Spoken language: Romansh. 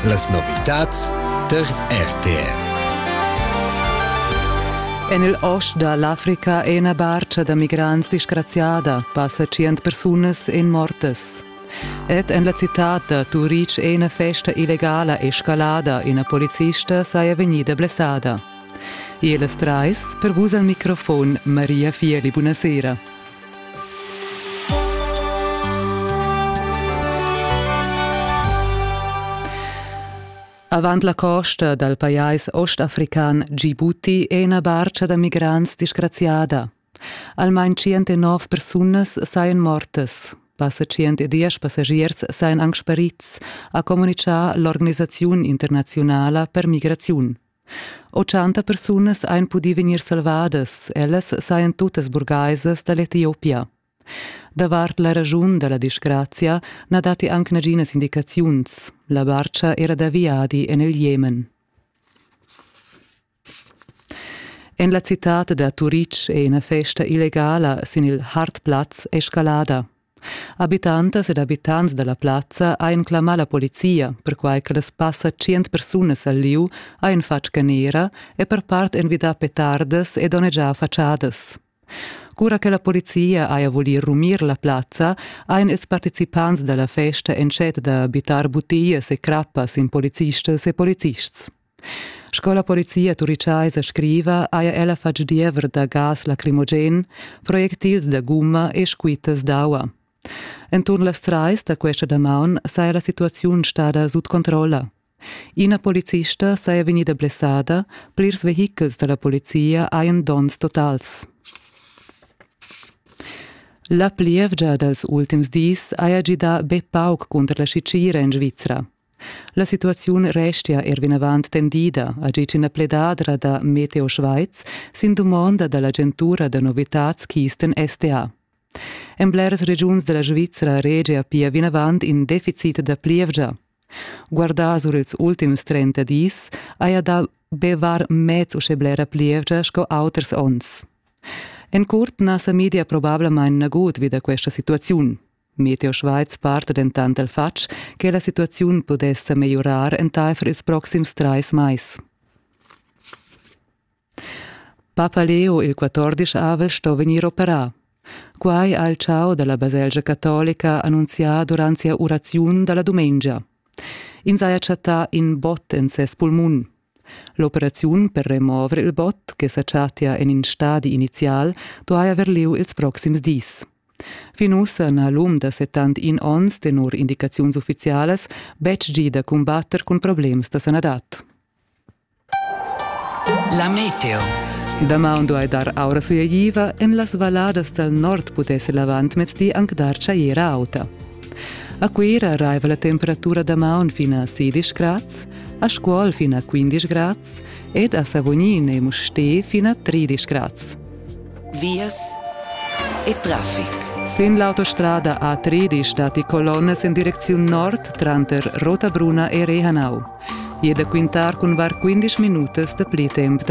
Las novitads tar RTV. En il ost da l'Africa è ina barcha da migrants disgraziada, passa tschient persunas en mortas. Ed en la citad da Turic è ina festa illegala escalada, ina polizista saja vegnida blessada. E las trais, per vus al microfon, Maria Fieli, buonasera. Avant la costa dal pajais ostafrican Djibouti è ina barca da migrants disgraziada. Almain 109 persunas sajan mortas. Passa 110 passagiers sajan anc sparids, ha communitgà l'organisaziun internaziunala per migraziun. Ochanta persunas ein pudi vegnir salvadas, ellas sajan tuttas burgaisas dall'Etiopia. Davart la raschun dalla disgrazia na datti anc naginas indicaziuns. La barcha era da viadi en il Jemen. En la citad da Turitg è ina festa illegala sin il Hartplatz escalada. Habitantas ed habitants dalla plazza ein clamà la polizia, perquai che las passa tschient persunas al lieu ein fatg canera e per part envidà petardas e donnegià fatschadas. Cura che la polizia haja voli rumir la plazza, ein ils participants dalla festa entschet da bittar butias e crappas in policistas e polizists. Sco la polizia turichaisa scriva, haja ella fatg diever da gas lacrimogen, projectils da gumma e squittas d'aua. Enturn las trais da questa damaun saja la situaziun stada sut controlla. Ina policista saja vegnida blessada, plirs vehichels da la polizia hajan donns totals. La plievgia dals ultims dis haja gidà be pauc cunter la Sicília en Svizra. La situaziun restia er vinavant tendida a tgi ch'ina pledadra da Meteo Schweiz sin dumonda da l'agentura da novitads Kisten SDA. En bleras regiuns da la Svizra regia pia vinavant in deficit da plievgia. Guardà sur ils ultims 30 dis haja dà be var mez uschè blera plievgia sco auters onns. En curt na sa media probablamain nagut vi da questa situaziun. Meteo Schweiz parta dentant del fatg che la situaziun pudess megliorar entaifer ils proxims trais mais. Papa Leo il 14 avel sto vegnir operà. Quai ha il ciao della baselgia cattolica annunzià durant sia uraziun dalla dumengia. Ins haja chattà in bot en ses pulmun. L'operaziun per remover il bot che sa chattia en in stadi inizial duai haver lieu ils proxims dis. Fin ussa n'ha l'um da 71 onns tenor indicaziuns uffizialas betg gì da cumbatter cun problems da sanadad. La meteo. Damaun duai dar aura sujativa, en las valladas dal nord pudess l'avantmezdi anc dar tschajera auta. A Cuira raiva la temperatura da maun fin a 16 grads, a Scuol fin a 15 grads ed a Savognin e Mustér fin a 13 grads. Vias e traffic. Sin l'autostrada A13 stati colonnas in direcziun nord tranter Rotabruna e Rehanau. E da quintar cun var 15 minutas da pli temp da